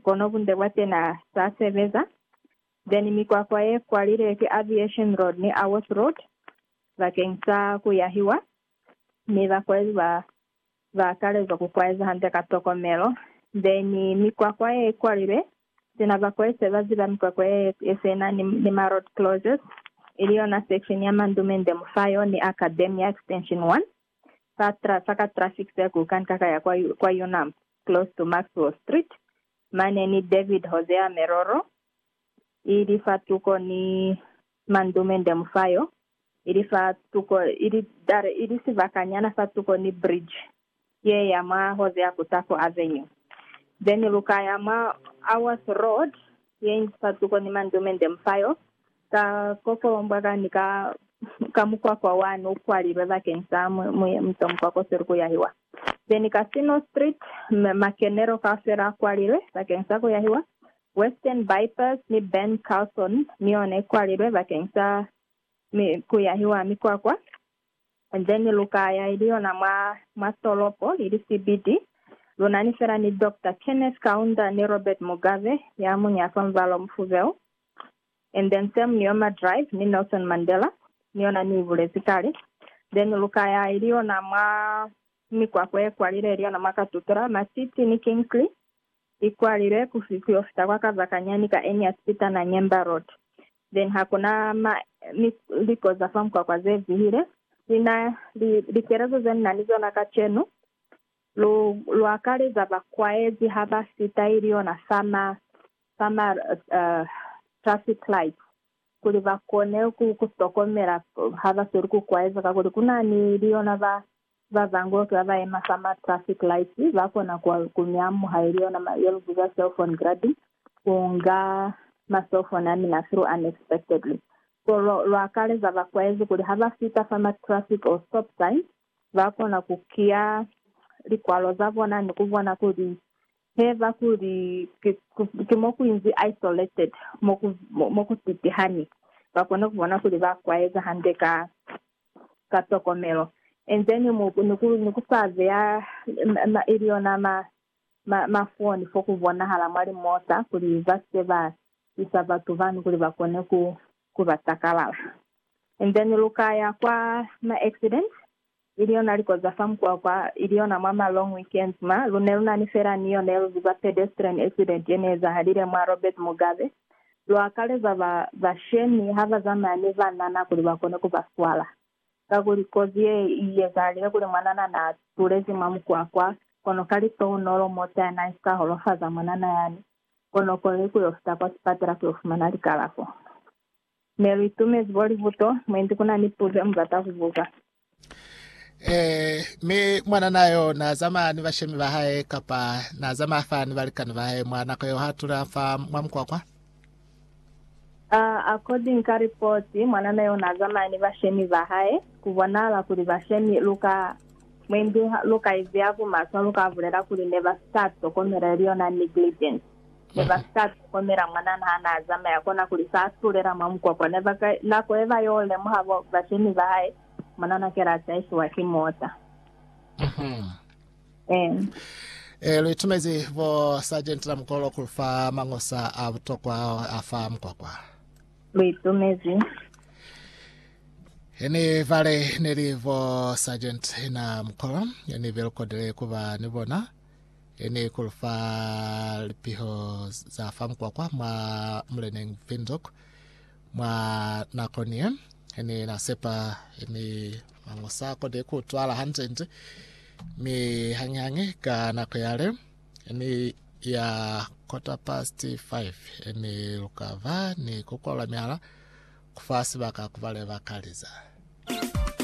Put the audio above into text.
kono bunde bwa tena sa sebeza, then mikwakwa ye kwalile ki Aviation Road ni Aworth Road bakeng sa ku yahiwa, mi bakwezi ba ba akalezwa ku kwaeza hande ka tokomelo, then mikwakwa ye kwalilwe sina bakwezi se ba ziba mikwakwa ye ye sena ni, ni ma road closes, ili yona section ya Mandumende Mufayo ni Academia Extension 1. sa tra, sa ka traffic circle ka nka ka ya kwa, kwa Unamp, close to Maxwell Street, mane ni David Hosea Meroro, ili fa tuko ni Mandume Ndemufayo, ili fa tuko, ili, dare, ili sibakanyana fa tuko ni bridge ye ya mwa Hosea Kutafo Avenue. Then lu ka ya mwa Aworth Road, ye inzi fa tuko ni Mandume Ndemufayo, Ka kokombwa kani ka, ka mukwakwa wani ukwalilwe bakeng sa muyemuto mukwakwa usili kuyahiwa. Beni Casino Street, makenelo kaufela akwalilwe bakeng sa kuyahiwa. Western Bypass ni Ben Carson niyona ikwalilwe bakeng sa kuyahiwa mikwakwa. Then lukaya ili yona mwa, mwa tolopo, ili CBD. Lunani fela ni Doctor Kenneth Kaunda ni Robert Mugabe, yamuñi afa mubala omufubelu. and then same ni yoma drive ni Nelson Mandela ni yona ni ibulezi kale, then lukaya ili yona mwa mikwakwa ye kwalile ili yona mwa Katutura, Matiti ni Kingsley i kwalile ku ku yo fita kwa Kazakanya ni ka Ennius Peter na Nyemba road, then hakuna ma mi liko za fa mukwakwa ze vihile, li na li likelezo ze ni na ni zona kacenu lu lu akaleza ba kwaezi ha ba fita ili yona fa ma ba ma traffic light kuli ba kone ku ku tokomela ha ba sweli ku kwaeza, kakuli ku na ni li yona ba ba bangi oki ba ba yema fa ma traffic light ba kona ku ku mi amuha ili yona ma, ye lu biza cell phone grabbing, ku nga ma cell phone a mina through unexpectedly. So lwa lwa kaleza ba kwaezi kuli ha ba fita fa ma traffic or stop sign ba kona ku kiya likwalo za bona ni ku bona kuli Heba kuli ki, ki mo ku inzi isolated, mo ku, mo ku sitihani, ba kone ku bona kuli ba kwaeza hande ka, ka tokomelo. Enzeni mu, ni ku, ni ku sa beya ma, ma, ili yona ma, ma, mafoni fo ku bonahala mwa limota, kuli ba si ke ba isa batu bani kuli ba kone ku, ku ba takalala. Enzeni lu ka ya kwa ma accident, ili yona liko za fa mukwakwa, ili yona mwa ma long weekends ma, lu ne lu na ni fela ni yo ne lu ziba pedestrian accident ye ne ezahalile mwa Robert Mugabe, lu akaleza ba ba shemi ha ba zamaya ni banana kuli ba kone ku ba swala. Kakuli kozi ye i ezahalile kuli mwanana na tulezi mwa mukwakwa, kono ka litounolo mota ya nice ka holofaza mwanana yani, kono kono ni ku yo fita kwa sipatela ku yo fumana likalafo. Ne lu itumezi bo libuto. Mwendi ku na ni puzo ye mu bata ku buza. Ee, mi mwanana yo na zamaya ni bashemi ba hae, kapa na zamaya fa ni balikani ba hae mwa nako yeo ha tula fa mwa mukwakwa? Uh, according ka ripoti, mwanana yo na zamaya ni bashemi ba hae. Ku bonahala kuli bashemi lu ka mwendi lu ka iziya ku maswa, lu ka bulela kuli ne ba si ka tokomela ili yona negligence. Ne ba si ka lihokomela mwanana ha n'a zamaya, konakuli s'a tulela mwa mukwakwa. Ne ba ka nako ye ba y'o lemuha bo bashemi ba hae, mwanana ki l'a taisiwa ki mota. Ee. Ee, lu itumezi bo Sargent na Mukolo ku lu fa mañosa a butokwa ao a fa mukwakwa. Lu itumezi. He ni bale ne li bo Sargent na Mukolo, ne be lu kodile ku ba ni bona. Ye ne i kulu fa lipiho za fa mukwakwa mwa muleneñi Windhoek mwa nako ni ye. He ne na sepa ni mango sa koni ku twala hanti-nti, mi hañi-hañi ka nako yale ni ya quarter past five ni luka va ni ku kwalula mihala ku fa sibaka ku ba le ba kaliza.